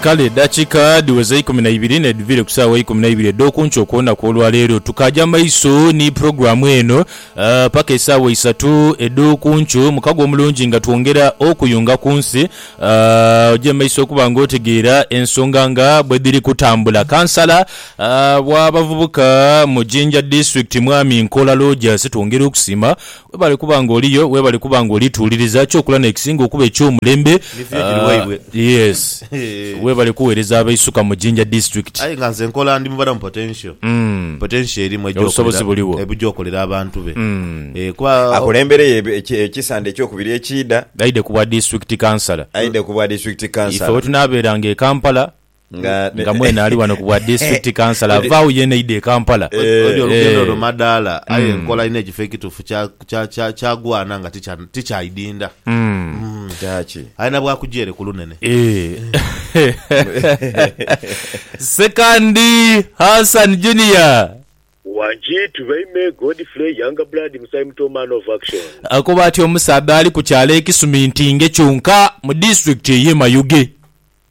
Kale edakika dhiweza eikumi na ibiri nedhiviire ku saawa eikumi na ibiri edhokunkyo okwolunaku olwaleero tukaaja maiso ni pulogulaamu eno paka esaawa isatu edhokunkyo mukago omulungi nga twongera okuyunga ku nsi oje mumaiso okuba nga otegeera ensonga nga bwedhiri kutambula. Kansala wa bavubuka mu Jinja District Mwami Nkola Lojas twongera okusiima Webale kuba nga oliyo, webale kuba nga oli tuwuliriza kyokula nekisinga okuba ekyomulembe Ni view giri waibwe. yes webale kuwereza abeisuka mu Jinja district. Aye nga nze nkola ndi mubalamu potential potential erimu eja Obusobozi okolera buliwo. ebuja okolera abantu be Eh, kuba Akulembereyo eb- eki- ekisande ekyokubiri ekiidha. Aidhe ku bwa district councillor. Aidhe ku bwa district Ife councillor. wetunabeeranga e Kampala Nga mwene ali wano ku bwa District Councillor avaagho yena aidha e Kampala. Odi olugendo luno madaala aye nkola inho ekifo ekitufu kyagwana nga tikyaidinda. Kyaki? Alina bwakuja ere ku lunene. Sekandi Hassan Junior. Wangi to baime Godfrey younger blood musayi muto man of action. Akoba ati omusaadha ali ku kyalo e Kisumintinge kyonka mu District eye Mayuge.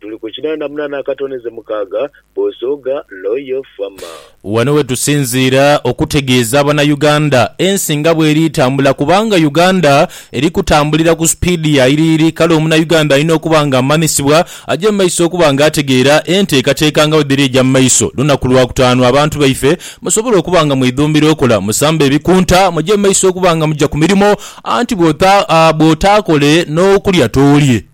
Tuli ku kinana munana akatoneze mukaaga, Bosooga Loyal Farmer. Wano wetusinziira okutegeeza abanauganda ensi nga bweri etambula kubanga Uganda eri kutambulira ku speed ya yiriyiri kale omunauganda alina okuba nga amanisibwa aje mu maiso okuba nga ategeera enteekateeka nga bwedhiri eja mu maiso lunaku lwakutaanu abantu baife musobole okuba nga mwedhumbira okola musambe ebikunta muje mu maiso okuba nga muja ku mirimo anti bwotaakolee n'okulya tolye.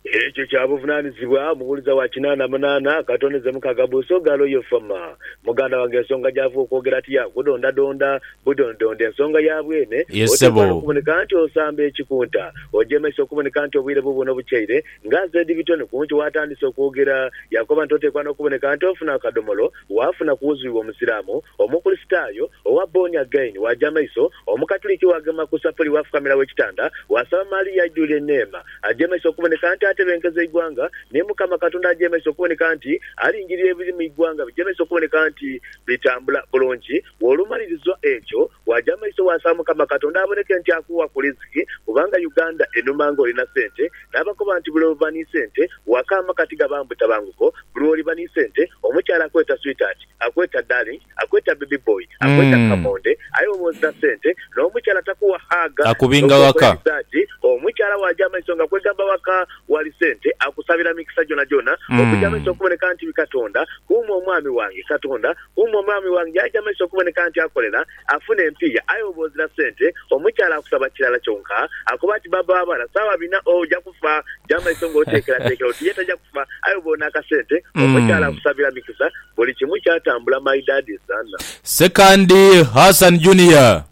Ekyo kya buvunanizibwa omuwuliza wa kinaana munaana akatondeze mukaaga buusa oghali oyo Fama. Muganda wange ensonga gy'ava okwogera ati ya kudondadonda budondidonde ensonga ya bwene, Ye oteekwa ssebo. n'okuboneka nti osamba ekikunta. Ojemeisa okuboneka nti obwire buubuno bukyaire nga Zedibitoni ku nkyo waatandise okwogera. Yakoba nti oteekwa n'okuboneka nti ofuna akadhomolo. waafuna ku wuzui w'Omusiraamu, Omukulisitaayo, owa Born Again, waaja amaiso, Omukatuliki waagema ku sapuli waafukamira w'ekitanda, waasaba Maria aidhwire eneema, aje maiso okuboneka nti atebenkeza eighwanga, ni Mukama Katonda aje maiso okuboneka nti alingirira ebiri mu ighwanga bije maiso okuboneka nti bitambula bulungi. Bw'olumaliriza ekyo, waaja maiso waasaba Mukama Katonda aboneke nti akuwa ku liziki kubanga Uganda enuma ng'olina sente. Naabakoba nti buli lw'oba ni sente waka amaka tigabaamu butabanguko. Buli lw'oliba ni sente omukyala akweta sweetheart, akweta darling, akweta baby boy, akweta kamonde aye bwoba ozira sente n'omukyala takuwa hug n'okukoya risaati. Omukyala waaja amaiso nga kwegamba waka wali sente akusabira mikisa gyonagyona. Okuja amaiso okuboneka nti bi Katonda kuuma omwami wange, Katonda Umwe omwami wange yaja amaiso okuboneka nti akolera, afuna empiiya, aye bwoba ozira sente, omukyala akusaba kirala kyonka akoba ati baba wabana sawa bina oja kufa. Ja maiso nga otekeratekera oti ye taja kufa aye bwoba olina akasente, omukyala akusabira mikisa buli kimu kyatambula my dad is Zanna. Ssekandi Hassan Junior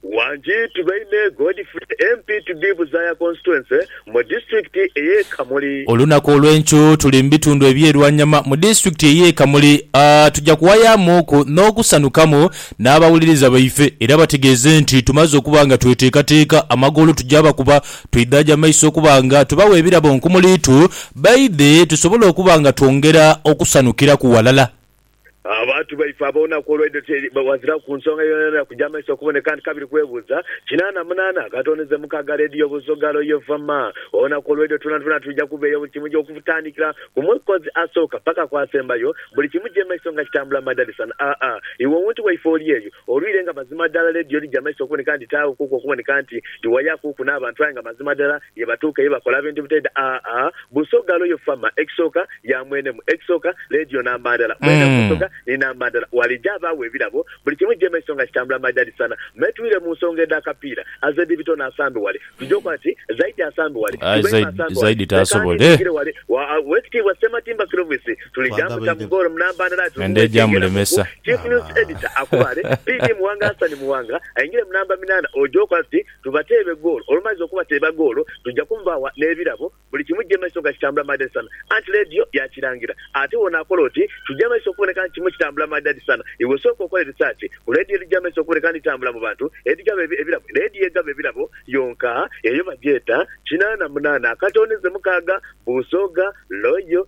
Wanjiitu Baine Godfrey MP to be Buzaaya Constituency mu Disitulikiti ey'e Kamuli. Olunaku olw'enkyo tuli mu bitundu eby'e Lwanyama mu Disitulikiti ey'e Kamuli. Tujja kuwayamuuku n'okusanukamu n'abawuliriza baife era bategeeze nti tumaze okuba nga tweteekateeka amagoolo tugya bakuba twaidhaagya maiso okuba nga tubawa ebirabo nkumuliitu baidhe tusobole okuba nga twongera okusanukiraku walala. Abantu baife ab'olunaku olwaidho ti wazira ku nsonga yonayona ya kuja maiso kuboneka nti kabiri kwebuuza kinaana munaana katoneze mukaaga leediyo Busoga Royal Fm. Olunaku olwaidho twona twona twija kubeeyo buli kimu okutandikira ku mwekozi asooka paka ku asembayo buli kimu kije maiso nga kitambula madalisan aa iwe ountu waife oli eyo olwire nga mazima dala leediyo lija maiso okuboneka nti taagho kuku okuboneka nti liwayakuuku n'abantu aye nga mazima dala Ye batuuka ye bakola bintu bitaidha aa Busoga Royal Farmer ekisooka ya mwenemu ekisooka leediyo namba ndala mwenemu Busoga ni namba ndala Walija abaagho ebirabo buli kimu jjema ekiso nga kitambula Maja Dhisana Me Twire mu nsonga edha kapiira Azedi Bitono asambe wale Tugye okola kati Zaidi asambe wale Aye Ibrahim Zaidi asambe wale Zaidi Leka ani taasobola nzingire wale Wa a Owekitiibwa Ssematimba Clovis Tulija mbuta mu goolo mu namba ndala Atunuule Endhodo ekyengera mu ku gyamulemesa. Chief News Editor akubaale PD Muwanga Hassan Muwanga aingire mu namba minana Oje okola tuti tubateebe goolo. Olumaliza okubateeba goolo, tuja kumubaagha n'ebirabo. Buli kimu kija mu maiso nga kitambula maadadi sana. Anti leediyo yaakirangira. Ate bw'onaakola oti, kija mu maiso okuboneka nti kimu kitambula maadadi sana. Iwe sooka okole risaaki ku leediyo edhija mu maiso okuboneka nti dhitambula mu bantu edhigaba ebirabo. Leediyo egaba ebirabo yonka eyo bagyeta, Kinaana Munaana, Akatooneze Mukaaga, Buusooga, Loyo,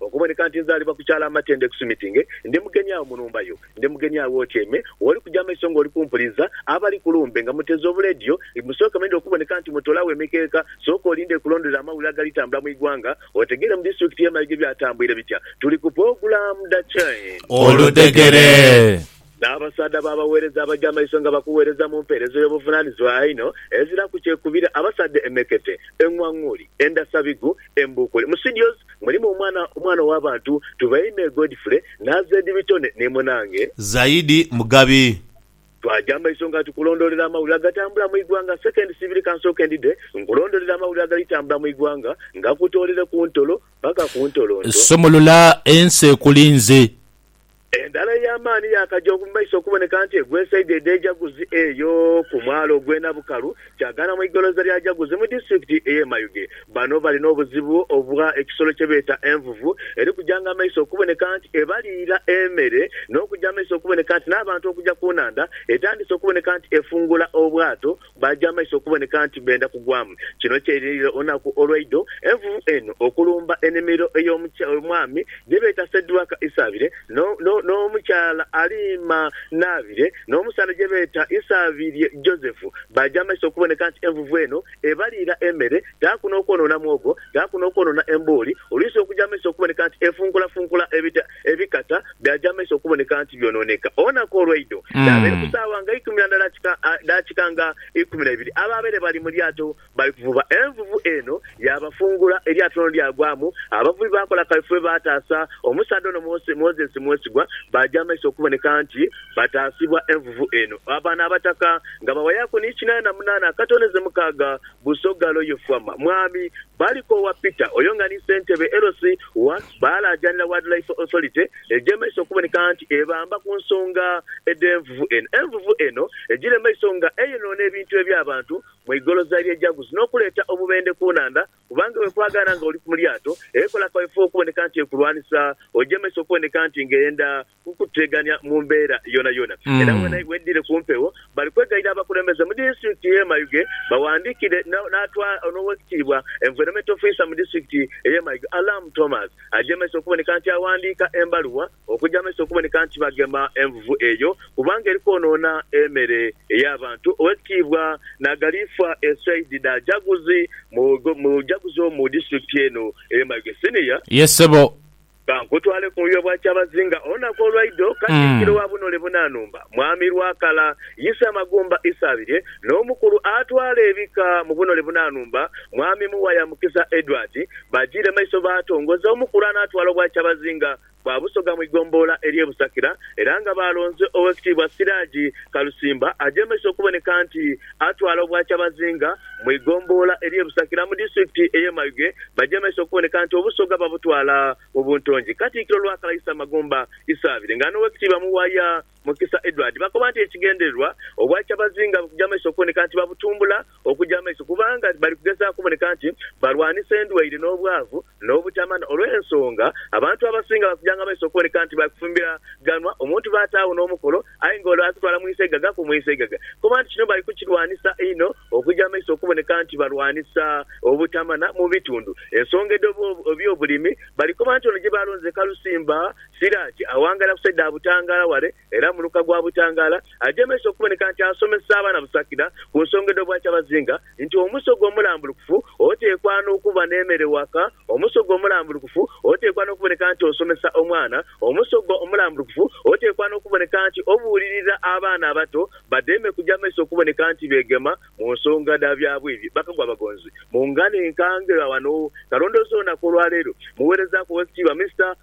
Okuboneka nti nzaalibwa ku kyalo amatendo ekusumitinge, ndi mugeni agho mu nhumba yo. Ndi mugeni agho w'otyaime, w'oli kuja amaiso ng'oli kumpuliza. Abali ku lumbe nga muteze obuleediyo, musooke mwidhe okuboneka nti mutoolagho emikeeka. Sooka olinde ekulondolere amawulire agalitambula mu igwanga, otegeere mu disiturikiti y'e Mayuge byatambwire bitya. Tuli ku pulogulaamu dha Change. Oludhegere. N'abasaadha b'abagheereza abaja amaiso nga bakugheereza mu mpeereza ey'obuvunaanizibwa einho, eziraku kyekubira, abasaadha emekete, eng'wang'uli, endasabigu, embuukuli. Mu studios mulimu omwana omwana ow'abantu Tubeime Godfrey n'Azed Bitone ni munange. Zaidi Mugabi. Twaja amaiso nga tukulondoolera amawulire agatambula mu igwanga. Sekendi siibiri kansooke ndidhe nkulondoolere amawulire agali tambula mu igwanga nga kutoolere ku ntolo paka ku ntolonto. Sumulula ensi ekulinze. Endhala ey'amaani yaakaja mu maiso okuboneka nti egwesaidha edha Ejaguzi eyo ku mwalo ogw'e Nabukalu, kyagaana mu igoloza lya Jaguzi mu disitulikiti ey'e Mayuge. Bano bali n'obuzibu obwa ekisolo kye beeta envuvu eri kujanga amaiso okuboneka nti ebaliira emere n'okuja amaiso okuboneka nti n'abantu okuja ku nhandha etandise okuboneka nti efungula obwato Baaja amaiso okuboneka nti benda kugwamu. Kino kyeirinirira olunaku olweidho envuvu eno okulumba enimiro ey'omwami gyebeeta Sedwaka Isaabire n'omukyala Aliima Naabire n'omusaadha gyebeeta Isaabirye Joseph. Baaja amaiso okuboneka nti envuvu eno ebaliira emere, taaku n'okwonoona mwogo, taaku n'okwonoona embuuli, oluisi okuja amaiso okuboneka nti efunkulafunkula ebikata byaja mu maiso okuboneka nti byonooneka. Olunaku olwaidho yaabaire ku saawa nga ikumi na ndala daakika nga ikumi na ibiri, abaabaire bali mu lyato bali kuvuba, envuvu eno yaabafungula, eryato lino lyagwamu. Abavubi baakola kaifube baataasa omusaadha ono Moses Mwesigwa, baaja mu maiso okuboneka nti bataasibwa envuvu eno. Bano Abataka nga bawayaaku ni kinaana na munaana akatondeze mukaaga, Busoga Loye Fuama, Mwami Balikoowa Peter, oyo nga ni Ssentebe LC wa. Baalaajanira Wildlife Authority egy'emaiso okuboneka nti ebamba ku nsonga edh'envuvu eno. Envuvu eno egira emaiso nga eyonoona ebintu eby'abantu mu igoloza ly'e Jagus n'okuleeta obubendhe ku nhandha kubanga bwe kwagaana nga oli mu lyato ekola kawefube okuboneka nti ekulwanisa ogy'emaiso okuboneka nti ng'eyenda kukutegania mu mbeera yonayona era wedhire ku mpewo. Bali kwegayirira abakulembeze mu disitulikiti ye Mayuge bawandikire n'owekitiibwa Environment Officer mu disitulikiti eye Mayuge Alam Thomas agyemese okuboneka nti awandiika embaluwa okugya maiso okuboneka nti bagema envuvu eyo kubanga eri kwonoona emere ey'abantu Owekitiibwa Nagaliifwa Esaid Dajaguzi mujaguzi omu disitulikiti eno eye Mayuge Senior. Ye ssebo Ka nkutwale ku muyiwa bwa kyabazinga olunaku olwaidho, Katikkiro wa Bunole Bunanumba, Mwami Lwakala, Yisa Magumba Isabirye, n'omukulu atwala ebika mu Bunole Bunanumba, Mwami Muwaya Mukisa Edward, bajiire maiso baatongoza omukulu anaatwala Obwakyabazinga bwa Busoga mu igombolola ery'e Busakira era nga baalonze Oweekitiibwa Siraji Kalusimba aje maiso okuboneka nti atwala Obwakyabazinga mu igombolola ery'e Busakira mu disitulikiti ey'e Mayuge bajemeisa okuboneka nti Obusoga babutwala mu buntongi. Katikkiro Lwakalaisa Magumba Isabire nga n'Owekitiibwa Muwaya Mukisa Edward bakoba nti ekigendererwa Obwakyabazinga bukujamaiso okuboneka nti babutumbula okujamaiso kubanga bali kugezaaku okuboneka nti balwanisa endwaire n'obwavu n'obutamani olw'ensonga abantu abasinga bakujanga amaiso okuboneka nti bakufumbiraganwa omuntu baataagho n'omukolo aye nga ole akutwala mu isaigaga ku mu isaigaga koba nti kino bali kukirwanisa inho okuja amaiso okuboneka nti balwanisa obutamana mu bitundu ensonga edh'ebyobulimi bali koba nti ono gye baalonze Kalusimba Siraje awangaira ku saidi dha Butangala wale era muluka gwa butangaala ajemeisa okuboneka nti asomesa abaana busakira ku nsonga edh'obwakyabazinga nti omusoga omulambulukufu oteekwa n'okuba n'emere waka Omusoga omulambulukufu oteekwa n'okuboneka nti osomesa omwana Omusoga omulambulukufu oteekwa n'okuboneka nti obuulirira abaana abato bademe kuja maiso okuboneka nti beegema mu nsonga dha byabwidhi Bakagwa Abagonzi mu ngalo enkange Gha wano kalondoozi olunaku olwaleero muweerezaaku Oweekitiibwa Mister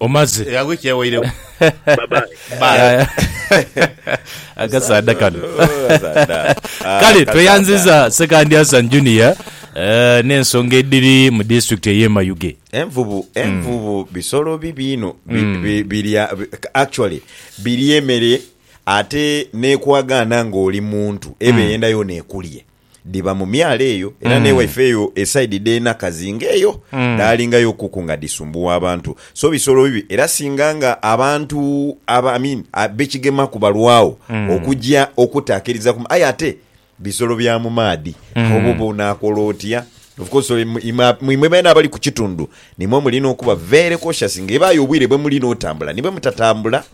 Omaze. Eh, agho ekyewairewo. Bye bye. Bye. Akasaadha kano. Ah, Kale tweyanziza Sekandi Hassan Junior eh, n'ensonga edhiri mu disitulikiti ey'e Mayuge. Envubu, envubu bisolo bibi inho bi, bi, birya bi- actually birya emere ate nekwagaana ng'oli muntu eba eyenda yona ekulye. dhiba mu myalo eyo era mm. n'ewaife eyo esaidi dh'enakazi ng'eyo mm. dhaalingayo kuku nga dhisumbuwa abantu so bisolo bibi era singa nga abantu aba, I mean, bekigemaku balwawo mm. okugya okutaakiriza ku aye ate bisolo bya mu maadhi mm. obo bonaakola otya of course imwe beena abali ku kitundu Nimwo mulina okuba very cautious nga ebaayo obwire bwe mulina otambula ni bwe mutatambula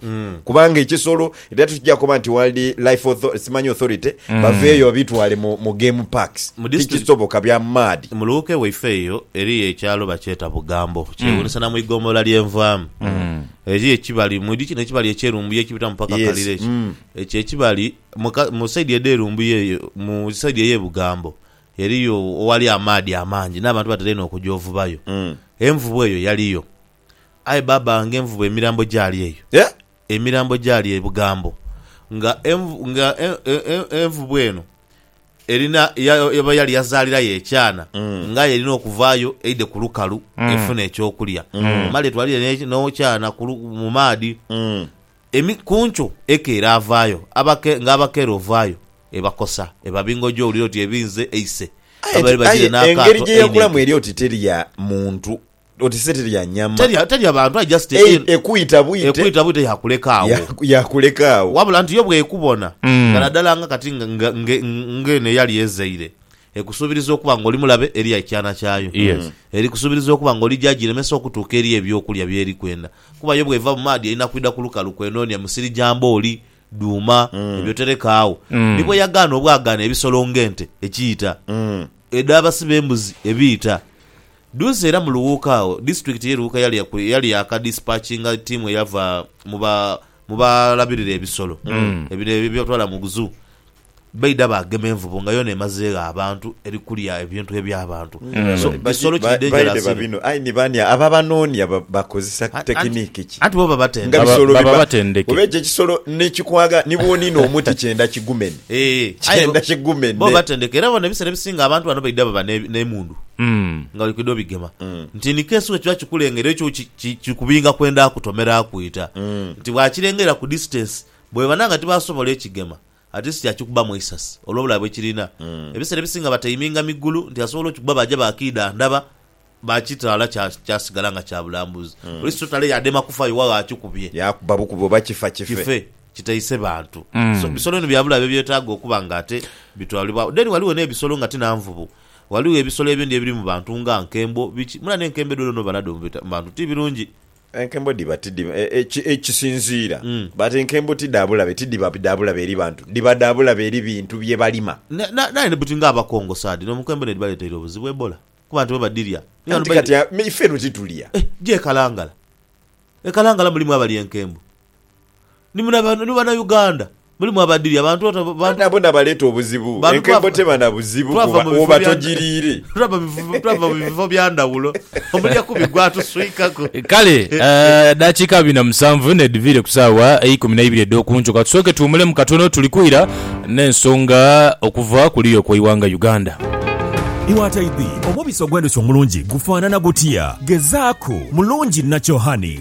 kubanga ekisolo era tukija koba nti World Life Author- Simanyi Authority baveeyo babitwale mu mu game parks. Mu district- Tikisoboka bya maadi. Mu luuka ewaife eyo eriyo ekyalo bakyeta Bugambo kyewuunisa na mu igoombolola lye nvaamu. Eriyo ekibali mwidhi kino ekibali ekye Lumbuye ekibitamu paka Yes, Kalira ekyo. mm. Ekyo ekibali mu ka- mu side edhe Lumbuye eyo mu side eye Bugambo Eriyo owali amaadhi amangi, n'abantu batera inho okuja ovubayo. Envubu eyo yaliyo. Aye baaba nga envubu emirambo gyali eyo! Emirambo gyali ebigambo. Nga envu, nga e, e, e, envubu eno erina, ya, eba yali yazaalirayo ekyana, nga aye erina okuvaayo eidhe ku lukalu efune eky'okulya. Male etwalire n'e, n'okyana ku lu, mu maadhi. Emi, ku nkyo eke eraavaayo, abake, nga abakeera ovaayo, ebakosa, eba bingoji owulira oti ebinze eise Aye abaire ti, bagiire aye engeri n'akaato gye yakulamu einhidho. eri oti teri ya muntu, oti se teri ya nyama. Teri, teri ya bantu aye just e, Ei, ekwita bwite. ekwita bwite yaakuleka agho. Yaku, yakuleka agho. Wabula nti yo bw'ekubona nga naddala nga kati nga, nga, nga, nga eno eyali ezaire, ekusuubiriza okuba nga oli mulabe eri ekyana kyayo. Yes. Erikusuubiriza okuba nga oli gy'agiremesa okutuuka eri eby'okulya by'eri kwenda. Kuba yo bw'eva mu maadhi erina kwidha ku lukalu kwenoonia musiri gya mbooli dhuuma, eby'otereka agho. Ni bwe yagaana obwagaane ebisolo ng'ente ekiita, edh'abasi b'embuzi ebiita. Duuzi era mu Luwuuka agho, disitulikiti y'e Luwuuka yali yaku- yali yaakadisipakinga ttiimu eyava mu ba- mu balabirira ebisolo, ebire eby'otwala mu Zoo, baidha baagema envubu nga yoona emazeegho abantu eri kulya ebintu eby'abantu. So, kisolo kiri dangerous inho. bino aye ni bani abo abanoonia bakozesa tekiniki ki Anti bo babatendeka. nga bisolo baba biba batendeke. oba ekyo ekisolo nekikwagala ni bwoniina omuti kyenda kigumene Eeh, aye bo- kyenda bo kigumene batendeke era bona ebiseera ebisinga abantu bano baidha baba ne- n'emundu Mm. nga bali kwidha obigema nti in case wekiba kikulengera ekyo ki- ki- kikubinga kwenda kutomera kwita nti bwakirengera ku distance Bwebana nga tibasobola ekigema, at least akikubamu eisasi olwobulabe bwekirina. Ebiseera ebisinga bataiminga migulu nti asobola okikuba baja bakiidha ndaba bakitaala kya kyasigala nga kya bulambuzi. Police totale yadema kufa iwe agho akikubye. Yakuba bukubi oba kifa kife. Kife, kitaise bantu. So bisolo bino byabulabe ebyetaaga okuba nga ate bitwalibwagho. Then ghaligho nebisolo nga ti na nvubu. Ghaligho ebisolo ebindi ebiri mu bantu nga nkembo, biki. Mula nenkembo edho dhona oba nadho mu bantu ti birungi. Enkembo dhiba tidhi, ekisinziira, but enkembo ti dha bulabe, tidhiba dha bulabe eri bantu, dhiba dha bulabe eri bintu bye balima. Naaye ni buti nga Abakongo saadhino enkembo n'edhibaleteire obuzibu Ebola kuba abantu bebadhirya. Anti kati ife eno titulya. Gye e Kalangala, e Kalangala mulimu abalya enkembo. Ni muna bana Uganda mulimu abadhiri abantu ota bantu. Nabo nabaleta obuzibu. Enkembo teba na buzibu kuba oba togiriire. Twava mu bifo bya ndhawulo omulya kubi gwatuswikaku. Kale edhakiika abiri na musanvu n'edhiviire ku saawa eikumi na ibiri edh'oku nkyo. Katusooke tuwumulemu katono tuli kwira n'ensonga okuva ku luya okw'eighanga Uganda. Iwataidhi, omubisi ogw'endhuki omulungi gufaanana gutya? Gezaaku, mulungi nakyo honey.